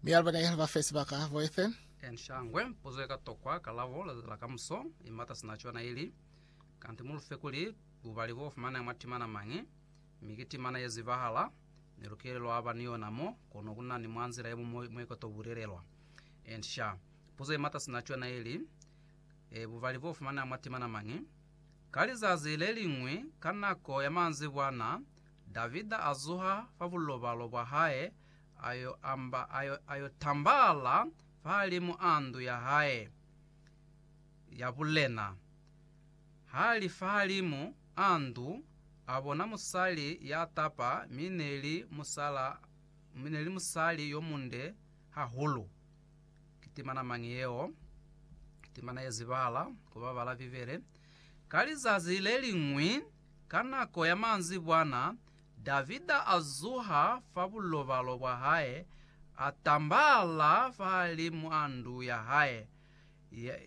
Mi alaba ne aliba fe sibaka boefe. N shangwe puzo ika tokwa kalabo leza la kamuso, i mata sina cona ili, Kanti mu lufe kuli bubali bo fumanea mwa timana mañi, mi ki timana ye zibahala, ne lu kile lwa ba ni yona mo, kono ku na ni mwa nzila ye muñwi mo ika to bulelelwa. N sha, puzo i mata sina cona ili, E, bubali bo fumanea mwa timana mañi? Ka lizazi le liñwi, ka nako ya manzibwana, Davida a zuha fa bulobalo bwa hae, a yo amba, a yo, a yo tambala fahalimu a ndu ya hae ya bulena, ha li fahalimu a ndu, a bona musali ya tapa, mi neli musala, mi neli musali yo munde hahulu. Ki timana mañi yeo? Timana ye zibala ku ba bala Bibele. Ka lizazi le liñwi, ka nako ya manzibwana, Davida a zuha fa bulobalo bwa hae, a tambahala fahalimw'a ndu ya hae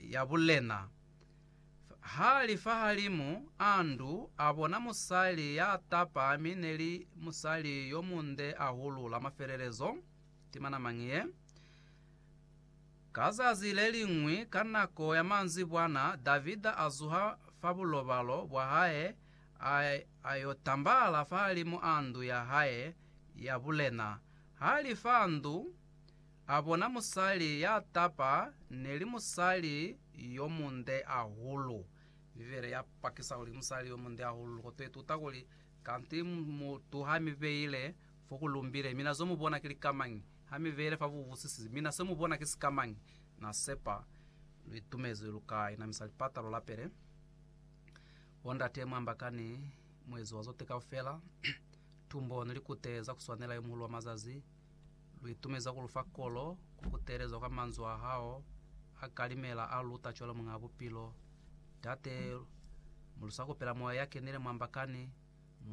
ya bulena. Ha li fahalimu a ndu, a bona musali ya tapa mi ne li musali yo munde ahulu la mafelelezo, timana mañi ye. Ka zazi le liñwi ka nako ya manzibwana, Davida a zuha fa bulobalo bwa hae, A, a yo tambala fahalimu a ndu ya hae ya bulena. Ha li fa ndu, a bona musali ya tapa, ne li musali yo munde ahulu. Bibele ya pakisa kuli musali yo munde ahulu. Loko to ituta kuli, Kanti mutu ha mi beile fo ku lumbile, mina zo mu bona ki likamañi? Ha mi beile fa bubusisi, mina se mu bona ki sikamañi? Na sepa lu itumezi lu ka inamisa lipata lu lapele. Bo ndate mwa mbaka ni muezi wa zote kaufela, tumbo ni likute za kuswanela yo muhulu wa mazazi, lu itumeza ku lu fa kolo, ku kutelezwa kwa manzwi a hao a kalimela a lu luta cwalo Muñaa Bupilo. Ndate, mo lu sa kupela Moya ya kenile mwa mbaka ni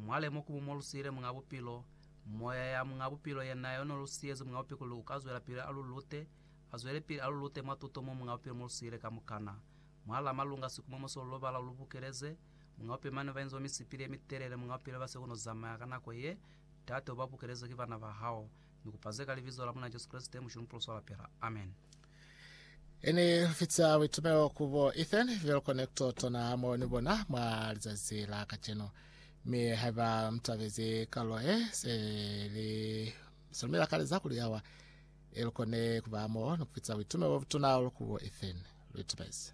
mwale mo kumu mo lu siile Muñaa Bupilo, Moya ya Muñaa Bupilo ye na yo no lu siyezi Muñaa Bupilo kuli u ka zwelapili a lu lute, a zwele pili a lu lute mwa tuto mo Muñaa Bupilo mo lu siile kamukana. Mwa la malunga sikumomo so lubala lu bukeleze, Munga upile mane bainzwa misipili ye mitelele, Munga upile base kono zamaya ka nako ye tate uba bukeleze ki bana ba hao. Ni kupa ze ka Libizo la Muna Jesu Kreste, Mushe Mupulu swa lapela. Amen. Ini fitisa buitumelo ku bo Ethan Velo Connector tona mo ni bona mwa lizazi la kacenu. Mi haiba mutabezi kalulo ye, se li se lumela kaleza kuli awa. Ili kone kuba mo ni kufitisa buitumelo bobutuna olukubo Ethan Luitibezi.